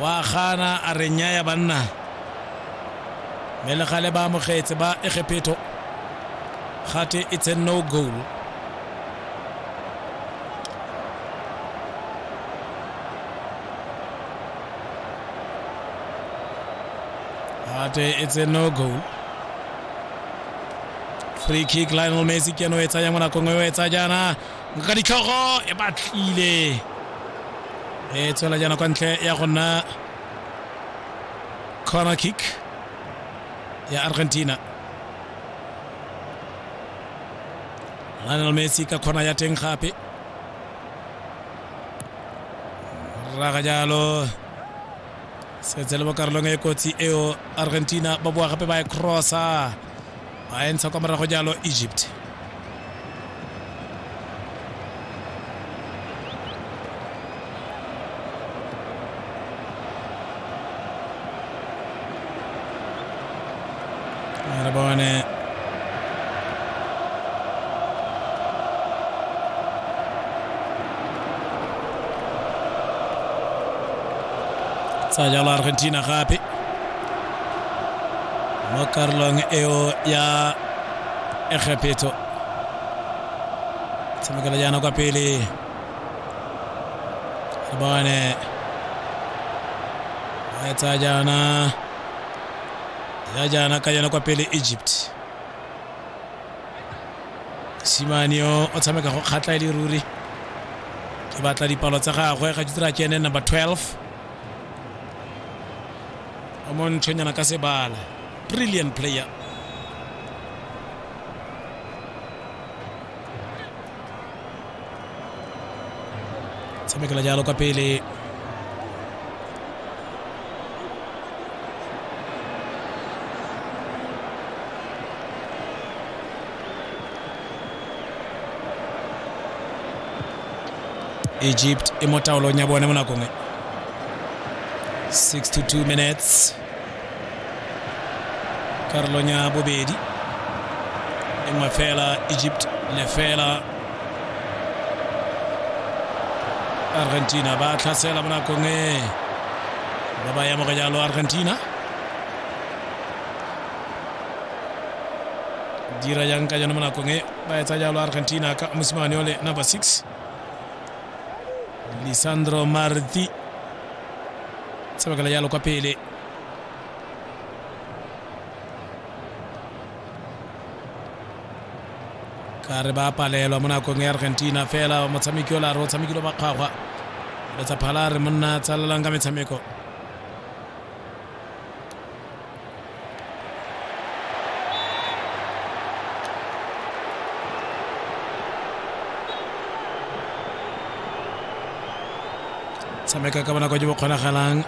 wa gana a re nyaya banna mme le gale ba amogetse ba egephetho gate it's a no goal gate it's a no goal free kick lionel messi ke no e tsaya mo nakong e o e tsa jaana ka ditlhogo e batlile e tswela jaana kwa ntle ya go nna corner kick ya argentina lionel messi ka kgona ya teng gape raga jalo setse le mo karolong e kotsi eo argentina ba boa gape ba e crossa a e ntsha kwa morago jalo egypt re bone tsa jalo argentina gape mo karolong eo ya egepetso tshamekela jaana kwa pele re bone ba etsa jaana ya jaana ka yona kwa pele egypt simane yo o tshameka go kgatla e le ruri ke batla dipalo tsa gagwe ga ke tsira kene number 12 o monthonyana ka sebala brilliant player tshamekela jalo kwa pele egypt e mo taolong ya bone mo nakong e 6 to 2 minutes karolong ya bobedi e nngwe fela egypt lefela argentina ba tlhasela mo nakong e ba ba yamoga jalo argentina dira jang ka jone mo nakong e ba etsa jalo argentina ka mosimane ole number 6 lisandro marti tsebakela jalo kwa pele ka re ba palelwa mo nakong ya argentina fela motshameki ola re o tshamekile makgwagwa letsa phala re monna tsalelang ka metshameko tshameka ka bonako jo bo kgonagalang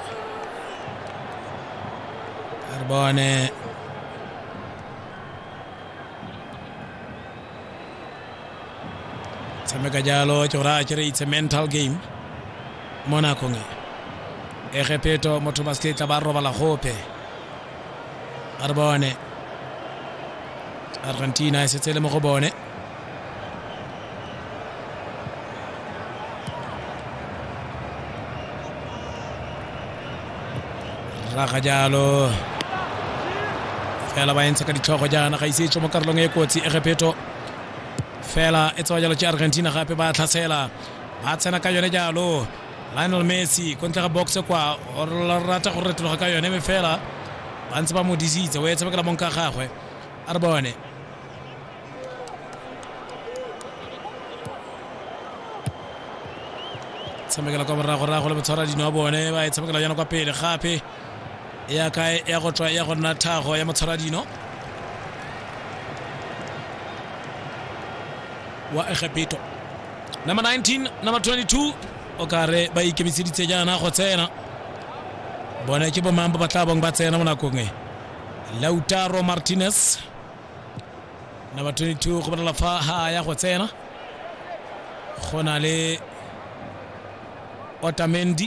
re bone tshameka jalo ke gore a kere it's a mental game mo nakong e egepeto motho ba seketla ba robala gope a re bone argentina e setse le mo go bone raga jalo fela ba entsha ka ditlhogo jaana ga ise e tswe mo karolong e kotsi egepeto fela e tsewa jalo ke argentina gape ba tlhatsela ba tsena ka yone jalo lionel messi ko ntle ga boxe kwa o rata go retologa ka yone me fela ba ntse ba mo disitse o etse bakela mong ka gagwe a re bone tshamekela kwa moragorago le botshwara dino wa bone ba e tshamekela jana kwa pele gape ya kae ya go tswa ya go nna tlhago ya motshwaradino wa egepeto number 19 number 22 o ka re ba ikemiseditse jaana go tsena bone ke bomang ba ba tla bong ba tsena mo nakong e lautaro martinez number 22 go bonala fa ha ya go tsena go na le otamendi